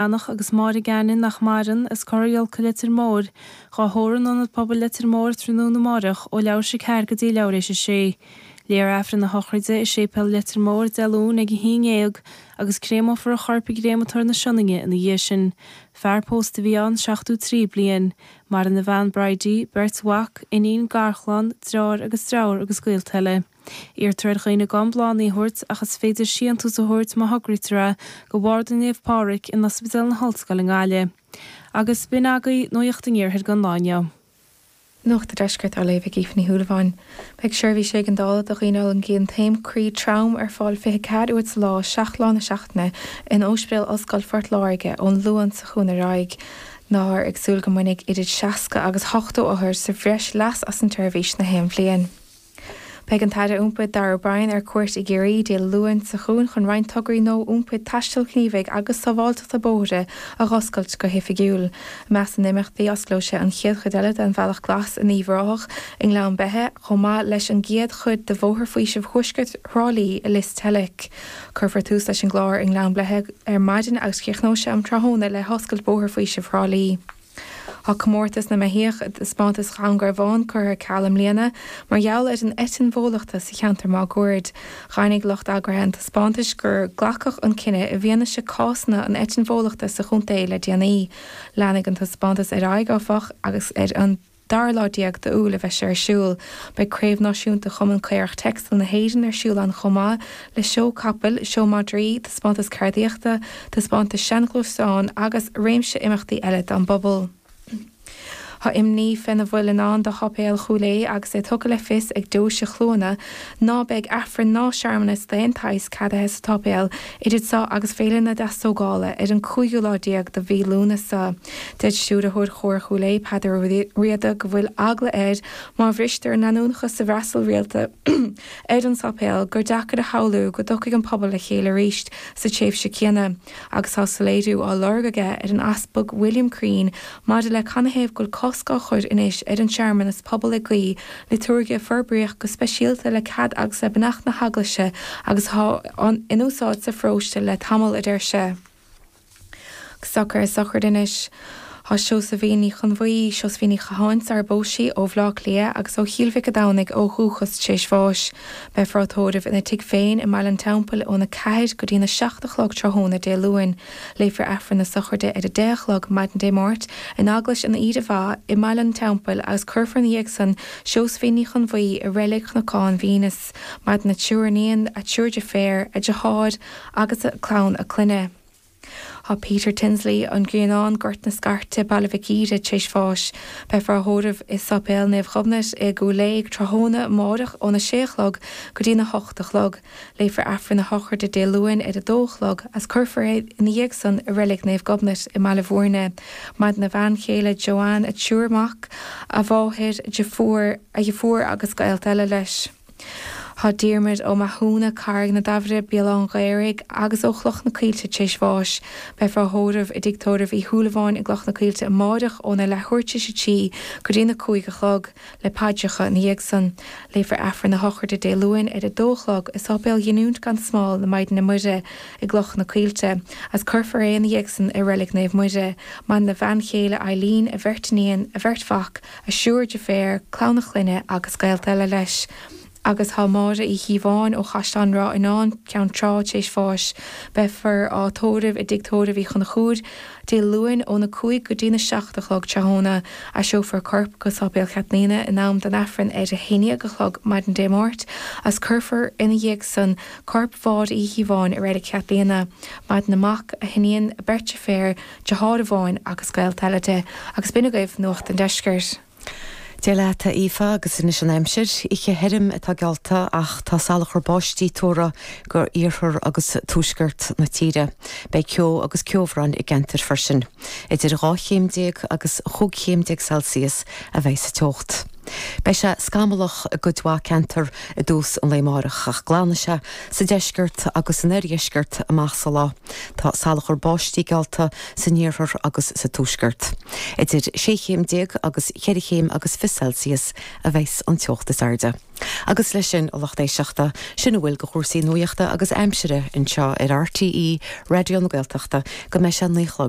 Eanach agus Máire Geanainn nach maireann, as Cora Ghiolca Leitir Móir, dhá thórramh in Ionad Pobail Leitir Móir tráthnóna amárach, ó leathuair thar éis a ceathair go dtí leathuair thar éis a sé. Léifear Aifreann a shochraide i Séipéal Leitir Móir Dé Luain ag a haon déag agus créamófar a chorp i gCréamatóir na Sionainne ina dhiaidh sin. Fear pósta a bhí ann seachtó trí bliain. Maireann a bhean Bridie, beirt mhac, iníon, garchlann, deartháir agus deirfiúr agus gaolta eile. Iarrtar ar dhaoine gan bláthannaí a thabhairt ach is féidir síontús a thabhairt má thograítear é do Bharda Naomh Pádraig in Ospidéal na hOllscoile i nGaillimh. Agus b'in agaibh nuacht an Iarthair don lá inniu. Nuacht an Deiscirt á léamh ag Aoife Ní Shúilleabháin. Beidh Seirbhís Éigeandála do dhaoine a fhulaingíonn taom croí trom ar fáil 24 uair sa lá, 7 lá na seachtaine in Óispidéal Ollscoil Phort Láirge ón Luan seo chugainn ar aghaidh. Táthar ag súil go mbainfidh idir 60 agus 80 othar sa bhreis leas as an tseirbhís nach aon bhliain. Beidh an tAire Iompair, Darragh O'Brien, ar cuairt i gCiarraí Dé Luain seo chugainn chun roinnt tograí nua iompair, taistil ghníomhaigh agus sábháilteachta bóithre a dh'oscailt go hoifigiúil. I measc na n-imeachtaí, osclóidh sé an chéad chuid eile den Bhealach Glas in Uíbh Ráthach i nGleann Beithe, chomh maith leis an gcéad chuid de Bhóthar Faoisimh Thuaisceart Thrá Lí i Lios Teilic. Cuirfear tús leis an gclár i nGleann Beithe ar maidin agus críochnóidh sé um tráthóna le hoscailt Bhóthar Faoisimh Thrá Lí. Tá comórtas na mbeithíoch i dtaispeántas Dhún Garbhán curtha ar ceal i mbliana mar gheall ar an eitinn bhólachta sa cheantar máguaird. Dheimhnigh lucht eagraithe an taispeántais gur glacadh an cinneadh i bhfianaise cásanna an eitinn bhólachta sa chontae le déanaí. Leanfaidh an taispeántas ar aghaidh, áfach, agus ar an. dara lá déag d'Iúil a bheidh sé ar siúl. Beidh Craobh Náisiúnta Chumann Caorach Texel na hÉireann ar siúl ann chomh maith le seó capall, seó madraí, taispeántas ceardaíochta, taispeántas seanghluaisteán agus réimse imeachtaí eile don bpobal. Tá imní faoina bhfuil i ndán do Sháipéal Chúil Aodha agus é tugtha le fios ag Deoise Chluana ná beidh Aifreann ná searmanas d'aon tsaghas ceadaithe sa tsáipéal Idir seo agus Féile na Deastógála ar an cúigiú lá déag de mhí Lúnasa. Deir Stiúrthóir Chór Chúil Aodha, Peadar Ó Riada, go bhfuil eagla air má bhristear an leanúnachas sa bhfreastal rialta ar an sáipéal gur deacair a shamhlú go dtiocfaidh an pobal le chéile arís sa tréimhse céanna agus tá soiléiriú á lorg aige ar an Easpag William Crean maidir le canathaobh go bhfuil cosc á chur anois ar an searmanas pobail ag guí Liotúirge a forbraíodh go speisialta le cead agus le beannacht na hEaglaise agus atá in úsáid sa pharóiste le tamall, a deir sé. Socrú sochraide anois. Tá Seosaimhín Uí Chonbhuí, Seosaimhín Ní Chatháin, sara bpós sí, ó Bhleá Cliath agus ó Chill Mhic a' Domhnaigh ó dhúchas tar éis bháis. Beifear á tórramh ina tigh féin i mBaile an Teampaill ón 4 go dtí'n 7 a chlog tráthnóna Dé Luain. Léifear Aifreann na Sochraide ar a deich a chlog maidin Dé Máirt in Eaglais an Aoire Mhaith i mBaile an Teampaill agus cuirfear ina dhiaidh san Seosaimhín Ní Chonbhuí i Reilig Chnocán Mhaínis. Maireann a triúr iníon, a triúr deirféar, a deartháir agus clann a clainne. Tá Peter Tinsley, An Grianán, Gort na Scairte, Baile Mhic Íre, tréis bháis. Beifear á thórramh i Sáipéal Naomh Gobnait i gCúil Aodha tráthnóna amáireach óna sé a chlog go dtína hocht a chlog. Léifear Aifreann a shochraide Dé Luain ar a dó a chlog agus cuirfear é ina dhiaidh san i Reilig Naomh Gobnait i mBaile Bhúirne. Maireann a bhean chéile Joanne, a thriúr mac, a mháthair, a dheartháir, a dheirfiúr agus gaolta eile leis. Tá Diarmuid Ó Mathúna, Carraig na Damhaire, Béal Átha an Ghaorthaidh agus ó Chloich na Coillte t'réis bháis. Beifear á thórramh i dtigh tórraimh Uí Shúilleabháin i gCloich na Coillte amáireach óna leathuair t'réis a trí go dtína cúig a chlog. le paidreacha ina dhiaidh san. Léifear Aifreann na Sochraide Dé Luain ar a dó a chlog i Sáipéal Ghiniúint gan Smál na Maighdine Muire i gCloich na Coillte, agus cuirfear é ina dhiaidh san i Reilig Naomh Muire, maireann a bhean chéile Eileen, a bheirt iníon, a bheirt mhac, a thriúr deirféar, clann a chlainne agus gaolta eile leis. Agus tá Máire Uí Chíobháin ó Chaisleán Ráthanáin, Ceann Trá, tar éis bháis. Beifear á tórramh i dTigh Tórraimh Uí Chonchúir, Dé Luain, óna cúig go dtína seacht a chlog tráthóna. Aistreofar an corp go Sáipéal Chaitlíona in am don Aifreann ar a haondhéag a chlog maidin Dé Máirt, agus cuirfear ina dhiaidh san corp Mháire Uí Chíobháin i Reilig Chaitlíona. Maireann a mac, a hiníon, a beirt deirféar, deartháir amháin agus gaolta eile léi. Agus b'in agaibh Nuacht an Deiscirt. Dia leat, a Aoife, agus anois an aimsir. Oíche thirim atá geallta ach tá salachar báistí tuartha d'iarthar agus tuaisceart na tíre. Beidh ceo agus ceobhrán i gceantair freisin. Idir dhá chéim déag agus chúig chéim déag Celsius a bheidh sa teocht. Beidh sé scamallach i gcuid mhaith ceantar i dtús an lae amárach ach glanfaidh sé sa deisceart agus san oirdheisceart amach sa lá. Tá salachar báistí geallta san iarthar agus sa tuaisceart. Idir sé chéim déag agus cheithre chéim agus fiche Celsius a bheas an teocht is airde. Agus leis sin, a lucht éisteachta, sin a bhfuil de chúrsaí nuachta agus aimsire anseo ar RTÉ Raidió na Gaeltachta go mbeidh sé a naoi a chlog.